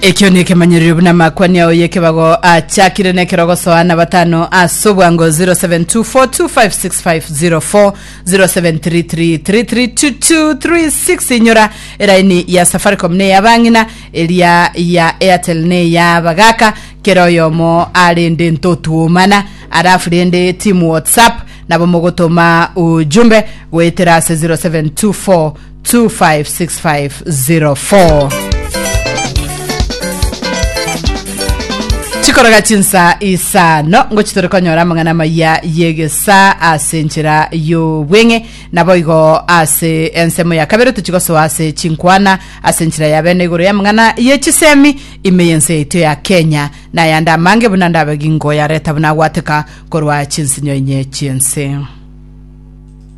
ekio ni ekemanyererio buna amakwani ao y'ekebago achakire n'ekerogoso ana batano ase obwango 0724256504 0733332236 inyora eraini ya safaricom ne ya bang'ina eria ya airtel ne ya bagaka kera oyomo arende ntotuomana arafu rende timu whatsapp nabo mogotoma ujumbe goetera ase 0724 256504 chikoroga chinsa isano ngochi tore konyora amang'ana amaya yegesa ase enchera y'obweng'e naboigo ase ensemo ya kabere tochigosoa ase chinkwana ase enchera ya bene igoro y'amang'ana ye chisemi ime y'ense yaito ya kenya na ayande amange buna ndabegingo yareta buna agwateka korwa chinsinyo inye chiense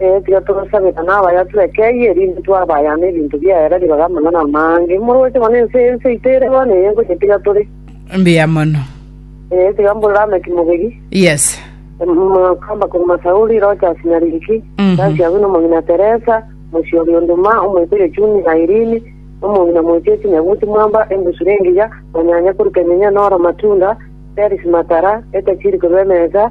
Ee, tiga tosabera nabayatu ekei, erinde twabayana ebinto biaye rari baga mono namaango. Imoroche bono ense, ense yaito ere bono eye ngoyetiga tore. Mbuya mono. Ee, tiga mbore Lameki mobegi. Yes. Mokamba korwa Masauri, Rochasi na Riki, Mhm. Tasi abwe nomong'ina Teresa, Mosiori Onduma, omoiberia Chuni na Irini, nomong'ina Mochesi Nyabuti Mwamba, Embusure Engiya, Manyanya korwa Kenyenya na Oro Matunda, Perisi Matara, Etachiri korwa Emesa,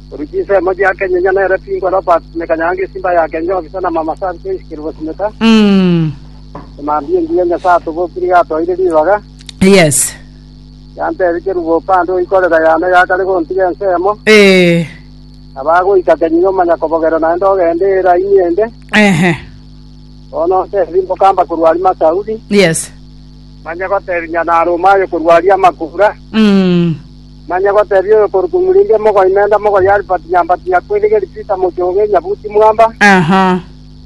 Korwa chinsemo chia Kenyenya nere Pingo Robert Simeka Nyangi Simba ya Kenya Ofisa na Mama Sir Joyce Kerubo Simeka Mm. Emambia engiya Nyasaye atobokire yatoire ribaga Yes. yantebia Kerubo opande oikorera yane yakare gontiga ensemo Eh. abagoika Kenyenya omanya kobogera naende ogende eraini ende Ehe. bono ntebi mbokamba korwa ari Masaudi Yes. manye gotebinya nare omayo korwa ari amakura Mm. Manya gotebia oyo korwa Kumurindia mogoi menda mogoi Albert Nyambati Nyakweirigeri Peter Mochoge Nyabuti Mwamba. Aha.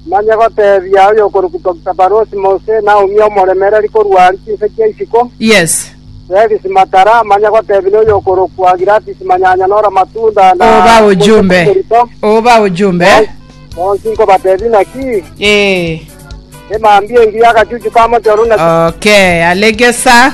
Manya gotebia oyo korwa Doctor Barosi Mose Naomi Omoremereri korwa aria chinse chia isiko. Yes. Felix Matara manya gotebia na oyo korokwa Gladys Manyanya Nora Matunda na Oba ojumbe. Moisés Okorito. Oba ojumbe. Bonsi nkobatebia naki Eh. emambia engiya agachuchu ka mochoro naki Okay, alegesa.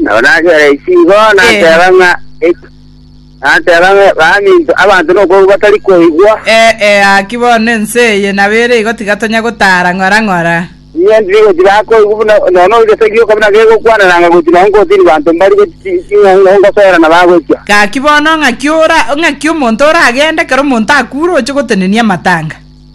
Nabo nagera ise igo nateba ng'a ek- nateba ng'a baminto abanto nokoigwa batari koigwa. Eh, eh, gaki bono ense eye nabo ere igo tigatonya gotara ng'ora ng'ora. Inye ndiri gochi bakoigwa buna nono gese gioka buna gegokwanana ng'a gochi nogo nkotiri banto mbari gochi chi- ching'ang'a ngosoerana bagochia. Gaki bono ng'aki ora ng'aki omonto oragende ekero omonto akure oche gotenenia amatanga?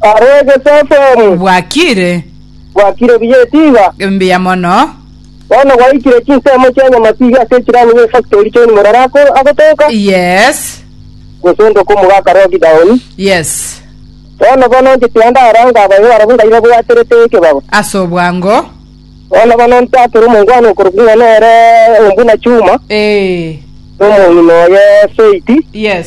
Are egesesemi. Bwakire. Bwakire buya etiga. Mbuya mono. Bono gwaikire chinsemo chia nyamatiga ase echirani be factory John Morara ako agotoka. Yes. Gose ndoka omogaka Rogi Daoni. Yes. Bono bono nchete ande ara ngabayo barabwo ngaire bwaterete ekebago. Ase obwango. Bono bono ntakere omongwana okorokwa ng'a nere Ombuna Chuma. Ee. Omong'ina oye Faith. Yes.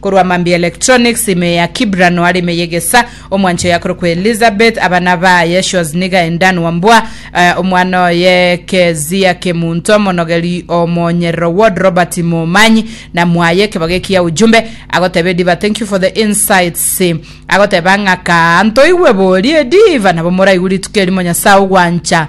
Korwa mambia electronics, ime ya Kibra noare ime y'egesa. Omwancho oye akorokwa Elizabeth, abana baye Shoz niga Endan Wambua, eh, omwana oye Kezia Kemunto, omonogeri o Monyerero Ward Robert Momanyi, na mwaye ekebago eki ya Ujumbe. Agoteba Ediva thank you for the insights. Agoteba ng'aka ntoigwe boria Ediva nabo moraigwe rituko erimo Nyasae ogwancha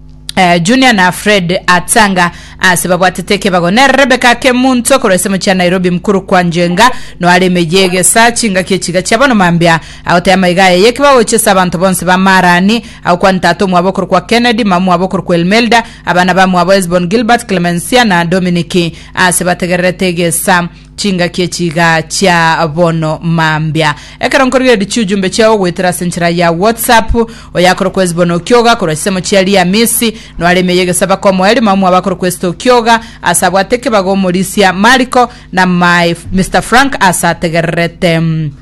eh, Junior na Fred Atanga ase babwatete ekebago nere Rebecca Kemunto korwa ase mochia Nairobi mkuru kwa Njenga noare emeyie egesa chingaki echiga chia bono mambia agotaya maiga aya yekebago gochia ase abanto bonsi ba Marani agokwa ntata omwabo okoru kwa Kennedy mama mwabo okoru kwa Elmelda abana ba mwabo Esbon Gilbert Clemencia na Dominic ase bategererete egesa Chingaki echi iga chia bono mambia. Ekero nkorigereria chiujumbe chiao goetera ase enchera ya WhatsApp, oyakorokwa Hesbon okioga korwa chisemo chia Liamisi, noare ime y'egesaba komoa erimo amo abakorokwa Esther okioga, ase abwate ekebago omorisia Mariko, na my Mister Frank ase ategererete.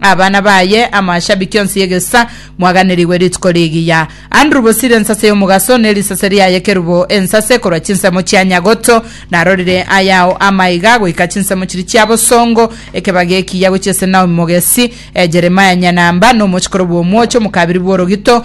abana baye amo ashabiki onsi y'egesisa mwaganerigwe rituko rigiya. Andrew Bosire ensase y'omogaso ne risase riaye kerubo ensase korwa chinsemo chia Nyagoto narorire ayao amaiga goika chinsemo chiri chia bosongo ekebaga ekiya gochia ase Naomi mogesi eh, Jeremiah Nyanamba nomochikoro bw'omwocho omokabiri bw'orogito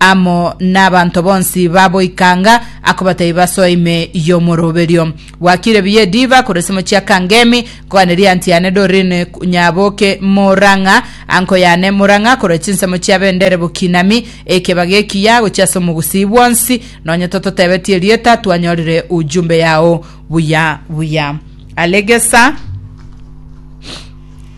amo nabanto bonsi ba boikanga, akobatebia basoe ime y'omoroberio. Gwakire biya ediba korwa ase mochiaka ngemi, nkoganeria anti yane Doreen Nyaboke Murang'a, anko yane Murang'a korwa chinsemo chia bendere bokinami, ekebaga ekiya gochia ase omogusii bwonsi, nonya tototebetie erieta twanyorire ujumbe yao buya buya. Alegesa.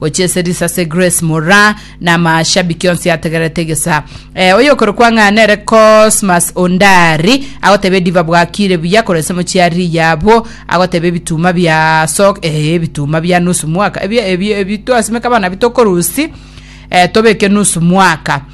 Gochia ase risase Grace Mora na amashabiki onsi ategererete egesa. Eh, oyokorokwa ng'a nere Cosmas Ondari agoteba ediva bwakire buya korwa ase mochiari yabo agoteba ebituma bia so eh, ebituma bia nusu mwaka ebi ebi ebi twasimeka bana bitokorusi eh, tobeke nusu mwaka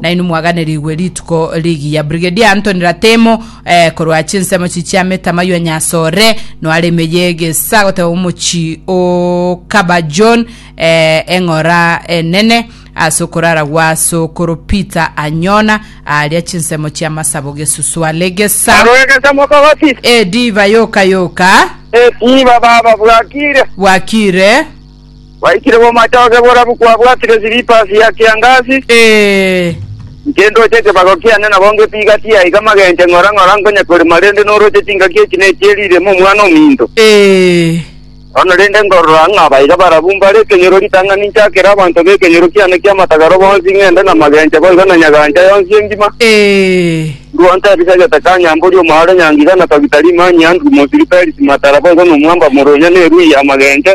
Nainwe mwaganerigwe rituko rigiya. Brigadier Anthony Ratemo eh, korwa chinsemo chi chiamete amaywa nyasore noare emeye egesa goteba omochi o Kaba John eh, eng'ora enene ase okorara gwa sokoro Peter Anyona aria chinsemo chia masabo gesuswa legesa Arwegesa mokogoti. ediva yoka yoka Etiba baba bwakire. bwakire Gwaikire bw'omochooke borabu kwabwatire silipa ase ya kiangasi, Ee. nkendoche ekebago kiane nabo ngepiga tiaa iga magenche ng'ora ng'ora nkonye korema rende noroche chingaki echi ne echi erirema omwana ominto. Ee. Bono rende nkorora ng'a abaiga barabu mbare ekenyoro ritang'ani nchakere abanto b'ekenyoro kiane ki'amatagaro bonsi ng'ende na magenche boigo na nyagancha yonsi engima, Ee. ndua ntebi segete ka nyambori omoaro nyangiga na togita rimanyia nduru mosiri perisi matara boigo nomwamba moronya ne erui y'amagenche,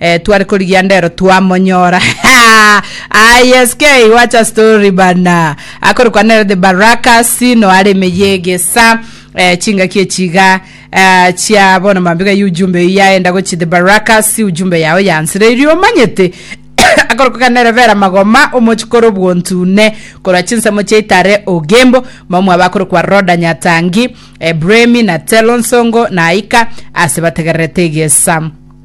Eh tware korigia ndero twamonyora ah yes kei watch a story bana akore kwa nere the barakas no are meyege sa eh chinga kie chiga eh chia bona mambiga yu jumbe ya enda gochi the barakas ujumbe yao yansire iri omanyete akore kwa nere vera magoma omochikoro bwontune korwa chinsemo chia itare ogembo mamwa bakore kwa roda nyatangi eh bremi na telonsongo na aika ase bategererete egesa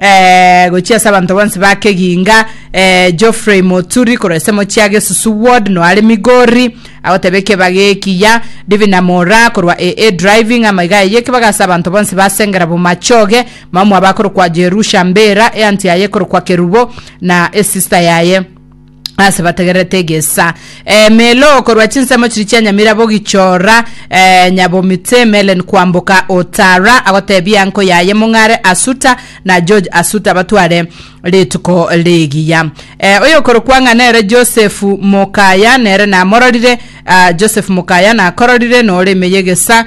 Eeh gochia ase abanto bonsi ba Keginga eeh Geoffrey Moturi korwa ase mochie age Susu ward no are Migori agoteba ekeba gekiya Divina Mora korwa AA Driving amaiga eye ekebaga ase abanto bonsi ba Sengera Bomachoge mama mwabo akorokwa Jerusha Mbera eanti yaye ekorokwa Kerubo na esister yaye ase bategererete egesa emelo korwa chinsemo chiri chia nyamirabo gichora eh, nyabomite melen kwamboka otara agotebia nko yaye mong'are asuta na george asuta batware rituko rigiya eh, oyokorokwa ng'a nere josefu mokaya nere namororire ah, joseph mokaya nakororire nore ime yegesa